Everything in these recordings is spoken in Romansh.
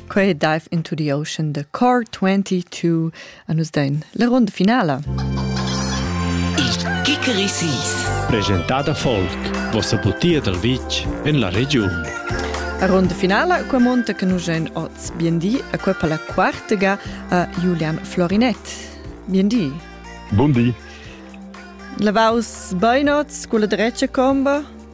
Quei dive into the ocean the car 22 an us den la ronda finala. Il Kikerisis Presentada folk Vossa butia dal vitg en la regiun A ronda finala qua monta che nus en oz biendi a qua per la quartega a Julian Florinett. Biendi. Bundi. Lavaus beinots cu la drecia comba?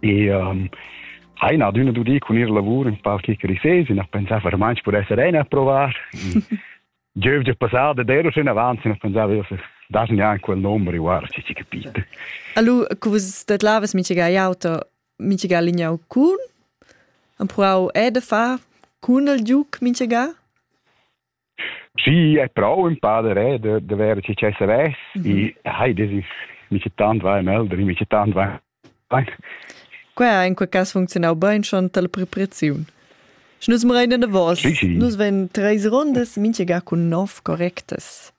E um, ha ina adüna dudi cun ir lavur in par chi crisses, in ha pensà vermaint per esser ein a provar. Giövgia passada d'ero schon avanti, ne pensava io se das neanche quel numero, guarda, ci ci capito. Allora, che vos det lavas mica auto, mica lignau cun? Am provau e da far cun il giuc mica? Schi è prou empau da reder da ver che che savess e hai des is mica tant vai melder mica tant vai Qua in quel cas funzionau bein schon tal prepreziun. Nus mrein davos. Nus ven treis rondas, minchega cun nov correctas.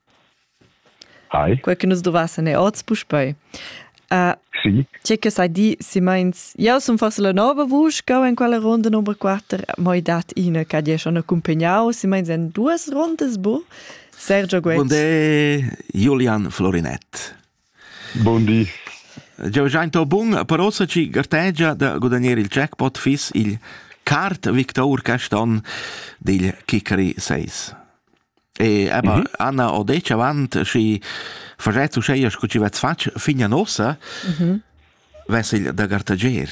Hai. Quei che nus dovassen è oz puspei. Uh, sì. Tge che sai di, si meins, jau sun forse la nova vusch che in quella ronda numero 4, ma i dat ina che die schon accompagnau, si meins en duas rondas bu. Sergio Guez. Bonde Julian Florinett. Bun di. Jeu schein to bun, però sa chi gartegia da gudagnir il jackpot fiss il Kart Victor quest onn dil Kickery 6. E aber mhm. Anna ho detg avant schi facetz uscheia sco chi vets fatg fin a nossa, mhm. vess il da gartegier.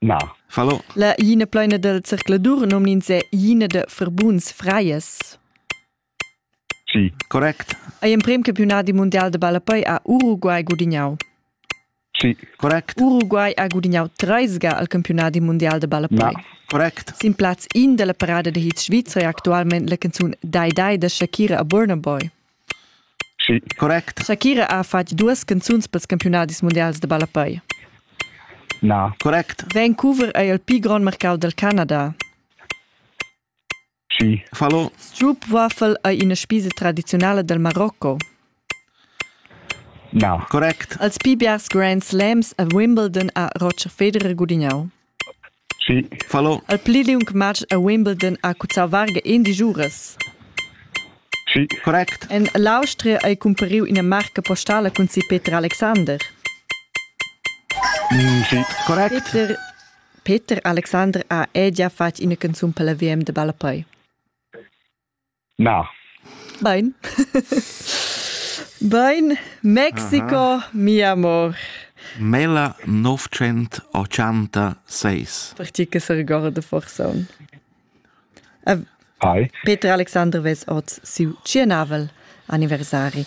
Nar. Fallo. La ina plaina del circladur nomn'ins è ina de Verbuns Freies. Sì, correct. Ei emprem campiunadi mundial de ballapei ha Uruguay gudignau. Sì, correct. Uruguay ha gudignau treis ga al campiunadi mundial de ballapei. Na, correct. Sin plaz in della parada de hits Svizra è actualmente la canzun Dai Dai de Shakira a Burna Boy. Sì, correct. Shakira ha fatg duas canzuns pels campiunadis mundials da ballapei. Na, correct. Vancouver ei il pli grond marcau dal Canada. Sì. Fallo. Strup Waffle ei ina spisa tradiziunala dal Marocco. Na, correct. Els pli biars Grand Slams a Wimbledon ha Roger Federer gudignau. Sì. Fallo. El pli liung matg a Wimbledon ha cuzzau varga in digiuras. Sì. Correct. En l'Austria ei cumpariu ina marca postala cun si Peter Alexander. Mm, sì. Correct. Peter, Peter Alexander ha ella fatg ina canzun per la VM de ballapei. Na. Bain. Bain, Mexico, Aha. mi amor. Mela 986. Per ti che si ricorda forse. Peter Alexander ves oz siu tschianavel anniversari.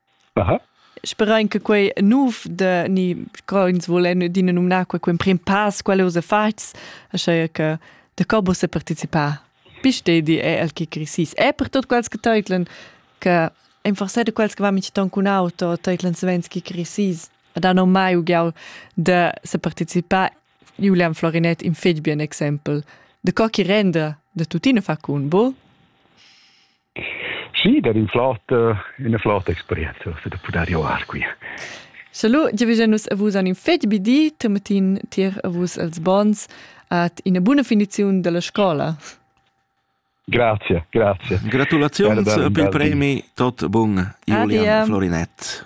Sperain che quei nov de ni co ins vulen adina numnar quei emprim pass, quelle usa fats, aschia che de co bo se participar. Pistedi è el che crisis. È per tot quels che teutlen che en forse de quels che va mit ton cun auto teutlen savens che crisis. Ad hanno mai ugiau de se participar Julian Florinet in fetg bien exempel. De co che renda de tutine fa cun bo? Sì, dat in flot, üna flota experienza se da pudair joar qui. Salut, giavüscha nus a vus an in fet bi di, Tematin tier a vus els bons at ina buna finiziun della scola. Grazie, grazie. Gratulazions per il premi tot bun Julian Florinett.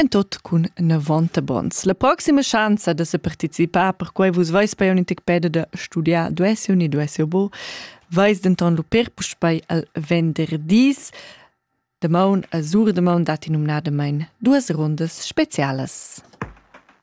en tot cun novanta bons. La proxima schanza da se participar per quei vus vais per un tic peda da studiar duessi un e duessi bo, vais denton lu per puspei al venderdis. De maun a sur de maun dat in umnadamain duas rundas specialas.